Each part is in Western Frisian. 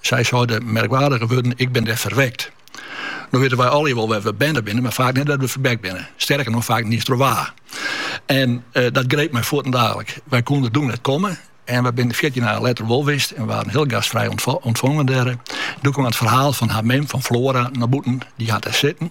Sy sei de merkwaardige wurden, Ik bin dêr ferwekt. No witte wy allegear wol wêr't we berne binne, mar faak net wêr't we ferwekt binne. Sterker noch, faak net iens troch wa. En eh, dat greep my fuortendalik. Wy koene doe net komme en wy binne fjirtjin dagen letter wol wist en waarden hiel gastfrij ûntfongen dêr. Doe kaam it ferhaal fan har mem, fan Flora, nei bûten. Dy hat dêr sitten.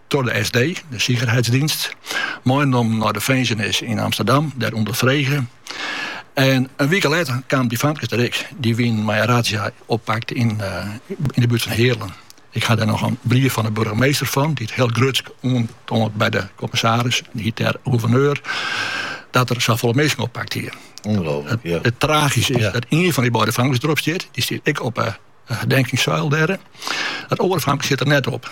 troch de SD, de Sicherheitsdienst, meinommen nei de finzenis yn Amsterdam, dêr ûnderfrege. En in wike letter kamen dy famkes der ek. Dy wienen mei in razzia oppakt yn, yn de buert fan Heerlen. Ik ha dêr noch in brief fan de burgemeester fan, dy't hiel grutsk oantoant by de kommissaris, dy hiet dêr gouverneur, dat er safolle minsken oppakt hie. Ûngelooflik, ja. It tragyske is dat ien fan dy beide famkes derop stiet. Dy stiet ek op 'e herdenkingssuil dêr. Dat oare famke stiet der net op.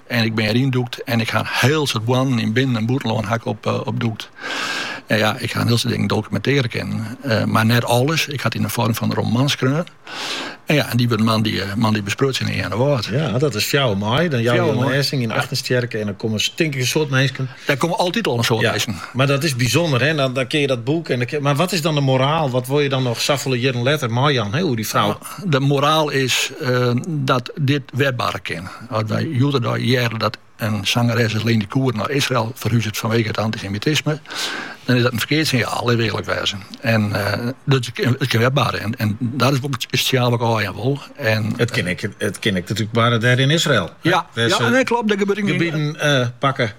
En ik bin der yndûkt en ik ha in hiel soad boarnen yn binnen en bûtenlân ha ik opdûkt. En ja, ik ha in hiel soad dingen dokumentearje kinnen, eh, mar net alles. Ik ha it yn de foarm fan in roman skreaun. En ja, en dy wurdt moandei, eh, moandei besprutsen yn Earnewâld. Ja, dat is fjouwer maai. Dan jouwe jo in lêzing yn Agnestsjerke en dan komme tink ik in soad minsken. Daar komme altyd al in soad minsken. Ja, mar dat is bysûnder, hè. Dan, dan kin je dat boek en dan, maar wat is dan de moraal? Wat wol je dan nog safolle jierren letter meijaan, hè, oer die vrouw? De moraal is eh, dat dit wer barre kin. As wy hjoed-de-dei hearre dat in sangeres as Lenny Kuhr nei Israel ferhuzet fanwege it antisemitisme, dan is dat in ferkeard sinjaal, litte we earlik wêze. En it kin wer barre. En dat is wol it sinjaal wat ik ôfjaan wol. It kin ek natuerlik barre dêr yn Israel. Ja, klopt. Gebieten pakke.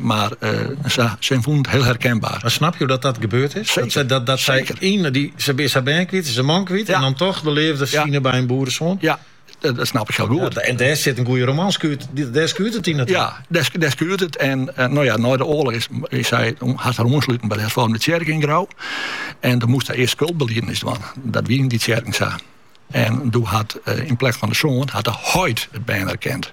Mar sy fûn it hiel herkenbaar. Mar snapje dat dat gebeurd is? Seker. Dat sy yn dy. Sy is har bern kwyt, sy is har man kwyt en dan toch de leafde fine by in boeresoan. Ja, dat snap ik hiel goed. En dêr sit in goede roman skuurt, dêr skuurt it yndied. Ja, dêr skuurt it en no ja, nei de oarloch is sy hat har oansluten by de hervormde tsjerke yn Grou en dan moast sy earst skuldbeliedenis dwaan. Dat wie yn dy tsjerken sa. En doe hat yn plek fan de soan hat de heit it bern erkend.